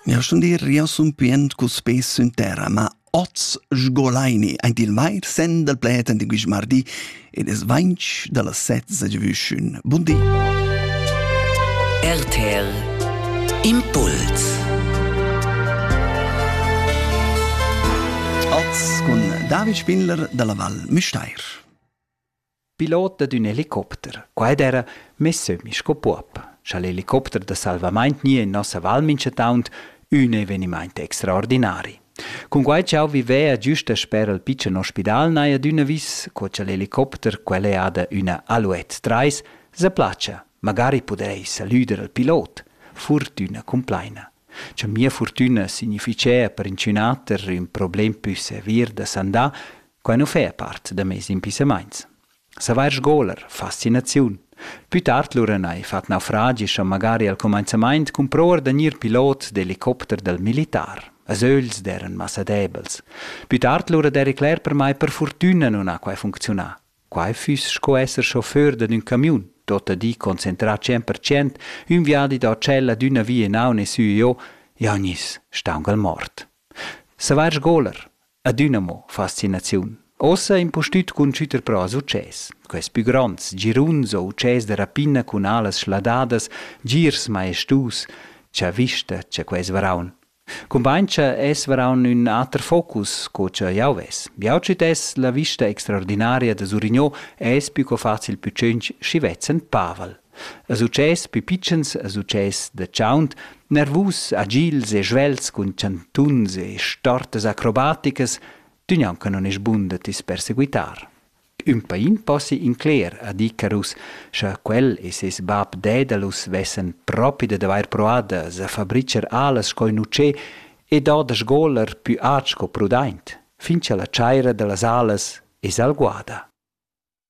Nel stundir jeu sun pient cul spes sün terra, ma oz sgolaini aint il vair sen dal pled ant il quist mardi ed es vainch da las set s'giavüschün. Bun di! RTL Impuls Oz cun David Spindler dalla Val Müstair. Pilot dad ün helicopter. Qua ed era mess sün sco puob. Scha l'helicopter da salvamaint gni in nossa val minchataunt, ün evenimaint extraordinari. Cun quai ch'eau vivea giüsta sper al pitschen ospidal n'haja adüna vis, co cha l'helicopter, quel è ada üna Alouette 3, sa platscha, magari pudair salüder al pilot. Furtüna cumplaina. Cha mia furtüna significhea per inchünater ün problem pü sevir da sandà, Quai nu fa part da meis impissamaints. Savair sgoler, fascinaziun. Pü tard lura n'hai fat naufragi scha magari al cumainzamaint cumprouer da gnir pilot d'elicopter dal militar. As ögls d'eran massa debels. Pü tard lura d'eri cler per mai per furtüna nun ha quai funcziunà. Quai füss sco esser chauffeur dad ün camiun, tuotta di concentrà cent per cent, ün viadi da tschel ad üna via in haun e sü e jo, jau gniss staungal mort. Savair sgoler, adüna mo fascinaziun. Ossa impustüt cun schütter però success. Quels pü gronds, giruns o utschès da rapina cun alas schladadas, girs maestus, cha vista cha quels varaun. Cumbain cha es varaun ün ater focus co cha jau ves. Jau tschütess la vista extraordinaria da Surigno es pü co facil pü tschinch schi vezzend Pavel. E success pü pitschens e success da chaunt, nervus, agils e svelts cun chantuns e stortas acrobaticas, tü gnanca non es bun da tis perseguitar. Ün pain possi incler ad Icarus, scha quel e ses bap Daedalus vessen propi dad avair proad da s'affabricher alas sco ün utschè e do da sgoler pü aint sco prudaint, fin cha la chaira da las alas es alguada.